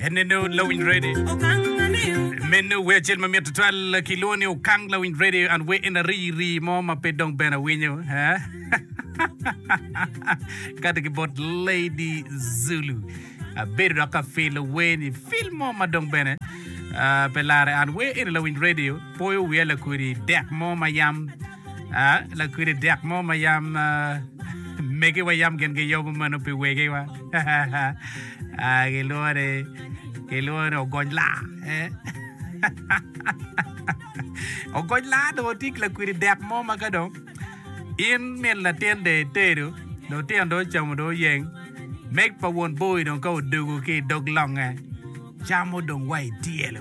Eneno lawiny ready. Meno wer acel mamit tutwal kilwongo ni Okang lawiny ready and we in a ri ri mo ma pe dong ben awinyo. Ha? Kati ki bot Lady Zulu. Abedo dok ka filo weni fil mo ma dong bene ah, pe lare and we in a lawiny radio poyo wiya lakodi dek mo ma yam lakwidi dek mo ma yam megiwa yam gin giyobo meno pi wegiwa gilwongo ni gilwongo ni ogony laa ogony laa dong otik lakwidi dek mo ma ka dong in min latin dong itedo dong tino dong ocamo dong oyeng meg pa won boyi dong ka odogo ki idog longe camo dong wa ityelo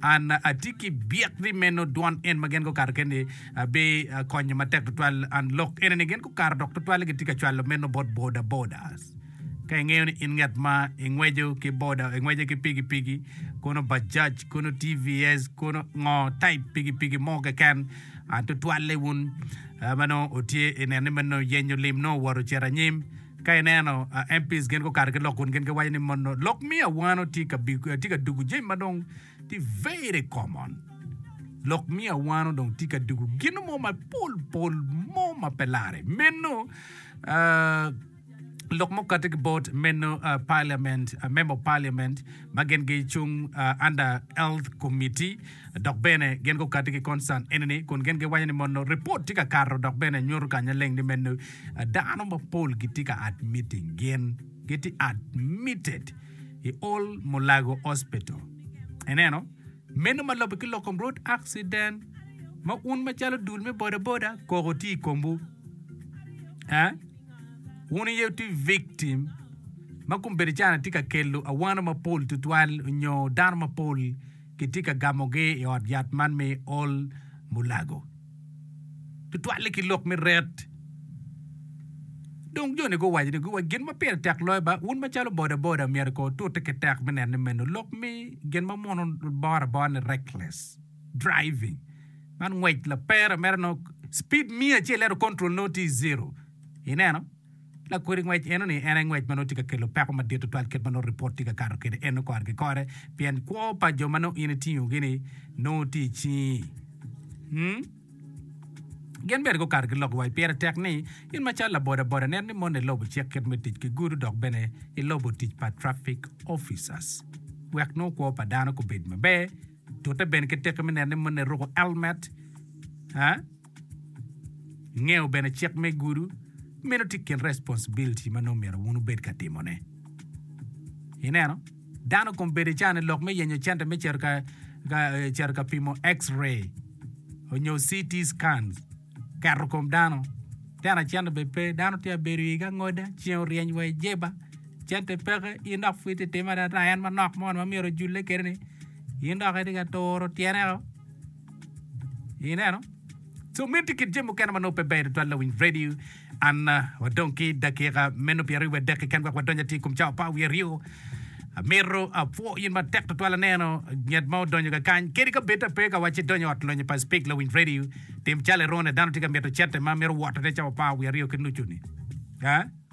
An atye ki byek ni meno dwon en ma gen gukato keni bi konyo matek tutwal. An lok ene ni gen gukato dok tutwale gitye ka cwalo meno bot boda bodas. Ka ingeyo ni in ngat ma ingwejo ki boda, ingweje ki pigi pigi, kono bajaj, kono TVS, kono ngo type pigi pigi mo keken, tutwalle wun ma nongo otye ineno ni meno yenyo lim nongo owoto ocito anyim. Ka ineno MPs gin gukato ki lok kun gin giwaco ni mono lok miyo awano tye ka big tye ka dugu jami ma dong tye very common. Lok miyo awano dong tye ka dugu gino mo ma pol pol mo ma pe lare. Meno ah, lok mukate ki bot meno ah, parliament, ah, member of parliament ma gin gicung ah, under health committee Dok bene, gin gukati ki concern eni-ni, kun gin giwaco ni mono ripot tye ka kato dok bene nyuto kanya leng ni meno dano mapol gitye ka admitting gin, gitye admitted i Old Mulago Hospital. Ineno? Meno ma lobbe ki lok kom road accident, ma un macalo dul me bodaboda, koko tye i komwu. Eh? Wun aye wutye victim ma kombeddi cana tye ka kelo awano mapol tutwal nyo dano mapol kitye ka gamogi i ot yat man me Ol Mulago, tutwal-li ki lok me ret. Dong jo-ni guwaco ni, Wa gin ma pire tek loyo ba, wun macalo bodaboda myero kono wutute ki tek me neno ni meno lok me gin ma mono boro abora ni reckless driving. Man ngwec laper mere nongo speed miya acel ento control nongo tye zero. Ineno? Lakodi ngwec enoni en aye ngwec ma nongo tye ka kelo peko madit tutwal kit ma nongo ripot tye ka kato kwede eno kore ki kore, pien kwo pa jo ma nongo in itingogi-ni nongo tye i cingi. Hmm. Gin bene gukato giloko wa. Pire tek ni, in macalo labodaboda, neno ni moni ilubo cik kit me tic ki gudo dok bene ilubo tic pa traffic officers wek nongo kwo pa dano gubed maber. Tute bene ki tiki me neno ni moni iruko elmet. Ha? Ingeyo bene cik me gudu, meno tye kin responsibility ma nongo myero wun wubed ka timone. Ineno, dano kong bedo icane lok me yenyo cente me cito ka, ka eh, cito ka pimo X-ray onyo CT scans, keto kom dano. Tena cente bene pe, dano tye ka bedo i iga ngoda, ceng oryeny wa i jeba, cente peke, in dok pwod ititimo ata en manok mo ni ma myero ojulle kede ni, in dok itye ka turo tyene o. Ineno? So miti kit jami mukene ma nongo pe ber tutwal lawiny redio. An ah, wadong ki dakika meno pyera aryo wadek keken wek wadony atir i kom cawa pa wiye aryo. Amito apwo in matek tutwal aneno nget ma odonyo ka kany kadi ka bed ta pe ka wacci donyo ot lonyo pa Speak lawiny redio tim calo irone dano tye ka mito cente ma mito wotone cawa pa wiye aryo ki nucu ni. Ah?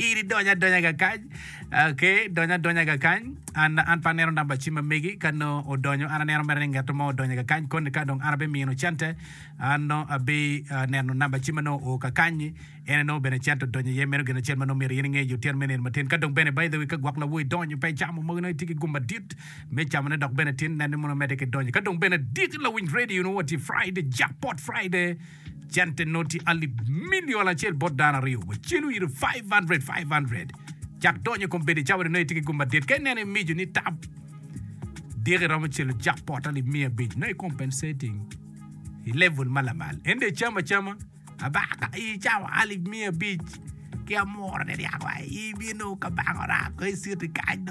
in idonyo adonya ga kany ok idonyo adonya ga kany an an pe aneno namba cim ma megi ka nongo odonyo an aneno mere ni ngat mo odonyo ga kany koni ka dong an abimino cente an nongo abineno namba cim ma nongo oo ka kany-nyi en aye nongo bene cente odonyo iye meno gin acel ma nongo myero in inge i otyeno me nino matin ka dong bene by the way ka gwok lawo idonyo pe icamo mogo nongo itye ki gum madit me camone dok bene tin nen ni mono omedde ki donyo ka dong bene dit lawiny radio nongo watye Friday Jackpot Friday cente noti alip milion acel bot dano aryo, wa celu iri 500, 500, cak donyo i kom bedo icawa ni nongo itye ki gum madit. Ka ineno imico ni tam diki iromo celo jackpot alip miya abic, nongo i compensating i level ma lamal. Ento icamo acama, abaka i icawa alip miya abic, ki amwora ni ryaka i bino kabaka orako i citi kany do.